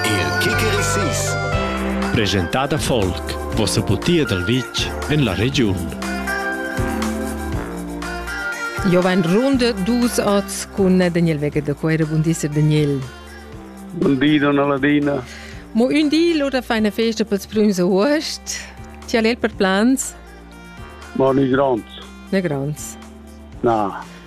Il Kikerisis presentada folk vossa putia dal vitg en la regiun. Jo vain runde dus ots cun Daniel Wegger de Coere. Bun di, Sir Daniel. Bun di, donna Ladina. Mo un di l'ora fa una festa pels prüms august. Ti al per plans? Ma ni grands. Ne grands. Na.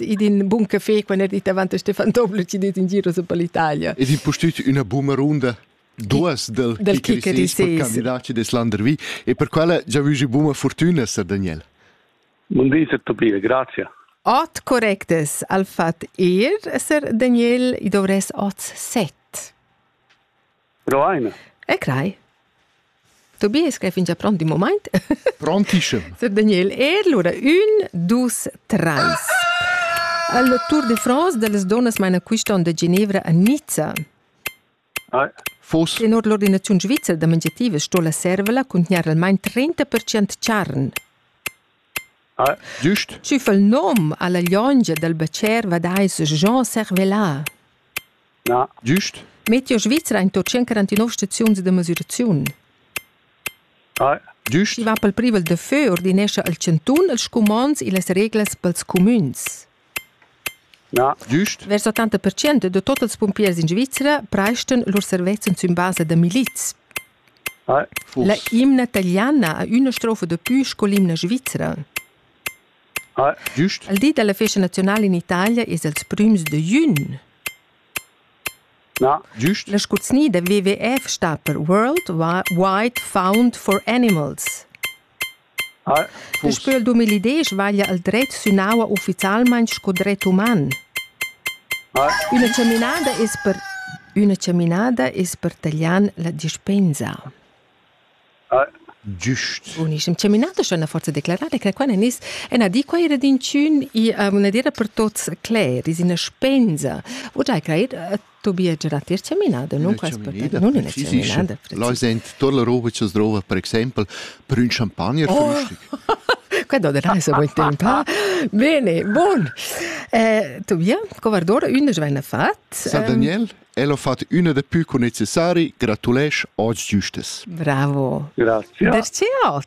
ed in bun café quando è davanti Stefan Tobler ci det in giro su per l'Italia. Ed in postut una buma runda duas del, del Kicker candidato des Landervi e per quella già vi buma fortuna Sir Daniel. Buon dì, Tobias, grazie. Ot correctes al fat ir, Sir Daniel, i dovres oz set. Però aina. E crai. Tobias che fingia pront in moment. Prontissem. Sir Daniel Ehl, ora un, dus, treis. Al Tour de France de les donas maina quiston de Ginevra a Nizza. Ah. Fos. Tenor l'ordinaziun svizra da mangiativa sto la servela contgnar almain 30% charn. Schi fa'l nom a la liongia dal bcher vadais Jean Servelin. Meteo Svizra in to 149 staziuns da mesüraziun. Schi va pel privel da fö ordinescha al Chantun els scumonds illas reglas pels cumüns. Giust. Vers 80 percent da tot ils pumpiers in Svizra preistan lur servezzan sün basa da milits. La imna taliana ha üna strofa da pü sco l'imna svizra. Giust. Al di dalla festa nazionala in Italia es els prüms da jun. Giust. La scurznia da WWF sta per World Wide Found for Animals. Daspö il duemila desch vaglia el dret sün aua ufficialmaing sco dret uman. Üna chaminada es per üna chaminada es per taglian la dispensa. Giust. Bunischem. Chaminata schon ha forza declarada che quella nis ena di quei redinciun i una dira per tots cler is ina spensa. Wo giai creit Tobias era tier chaminada, non prespertava, non in chaminada. Là sind tolle Robe zu drova, per exempel per un champagner oh. frühstück. Quello della se vuol tempa. Bene, buon. Eh, Tobia, Covardora, una svena fat. Sa Daniel, el ho fatto una de più che necessari, gratulesc oggi giustes. Bravo. Grazie. Perché ot?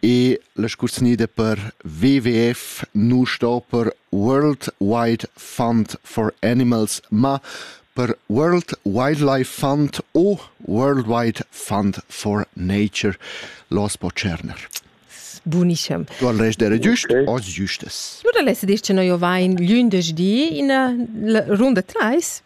E la scurznida per WWF nu sto per World Wide Fund for Animals, ma per World Wildlife Fund o Worldwide Fund for Nature los po tscherner. Bunischem. Tu al res dere giust, okay. os giustes. Nu da lesse dice noi vain glündesdi in runda 3